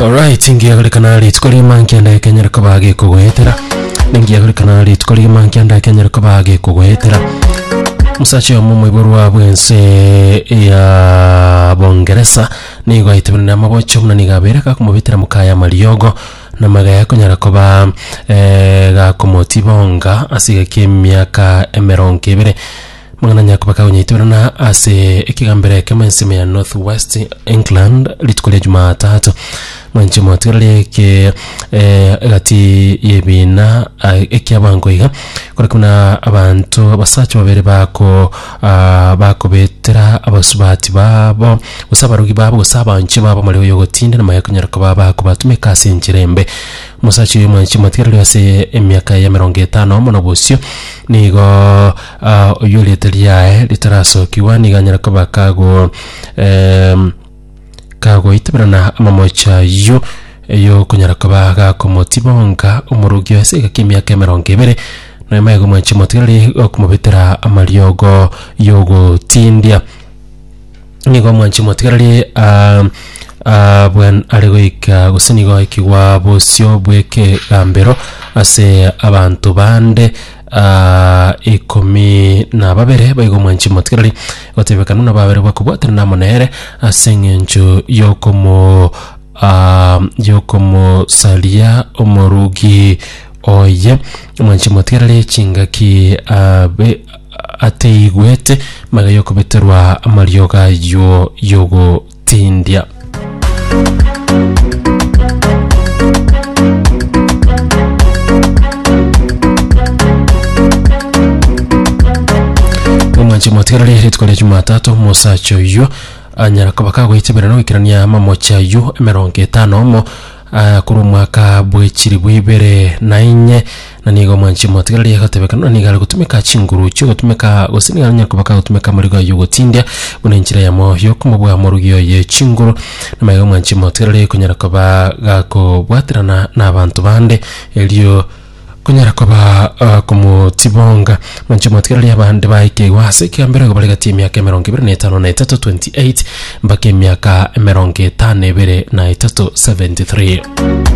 Alright, ngiagorekana rituko rima nkianda ekenyera koba gekogoetera ningiagorekana rituko rima nkianda ekenyera koba gekogoetera musacha oyo momoiborwa bwense ya bongeresa nigo aitebenire amabocho buna nigo abere gakomobetera mokaya amariogo na magaya akonyara koba eh, gakomotibonga ase egeka emiaka emerongo ebere Mang'ana a Nyakuba kagonyaitoberana ase ekegambero ekemo ensemo ya North West England rituko ria Jumatatu. Mwanche motigara rieke eh, egati y'ebiina ah, ekiabango iga kore kuna abanto abasacha babere bako ah, bakobetera abasubati babo gose abarogi babo gose abanche babo amareo y'ogotinda na konyara koba bakobatumeka ase enchera embe omosacha oyo mwanche motigara ase emiaka ya emerongo etano mono bosio nigo Aa, oyio rieta riaye ritarasokigwa nigo anyare koba kago em, kagoitiberana amamocho ayio eyo okonyara koba gakomotiba onka omorogi oye ase egeka ki'emiaka emerongo ebere nonya maega omwancha omotigereri okomobetera amariogo y'ogotindia. Nigo omwanchi motigarari ah, ah, bwen are goika gose nigo aikigwa bosio bw'ekegambero ase abanto bande ah, ikomi na babere baigo omwanchi motigarari gotebeka nuna babere bakobwatana namo nere ase eng'encho y'okomo ah, y'okomosaria omorugi oye omwanchi motigarari chingaki ah, be- ataigwete maya y'okobeterwa amariogo ayio y'ogotindia. omwanche mwatigarire rituko ria jumatatu omosacha oyio anyara koba kagoitibera na goikerania amamochi ayio emerongo etano omo Aya korwa omwaka bwe chilifu ibere na inye, na nigo mwanche motigere riagotebeka, na nigo are gotumeka chinguru chiogotumeka, gose nigo aranyare kobaka gotumeka amarigo aye yogotindia, buna enchera yamo yokomobua morugi oye chinguru. Namaiga mwanche motigere rikonyara koba gakobwaterana nabanto bande, erio Kunyara koba ah, komotibonga manche mwatiga riria abande baikeiwe ase ekiambero igo bare gati emiaka emerongo ebere na etano na etato 28 mpaka emiaka emerongo etano ebere na etato 73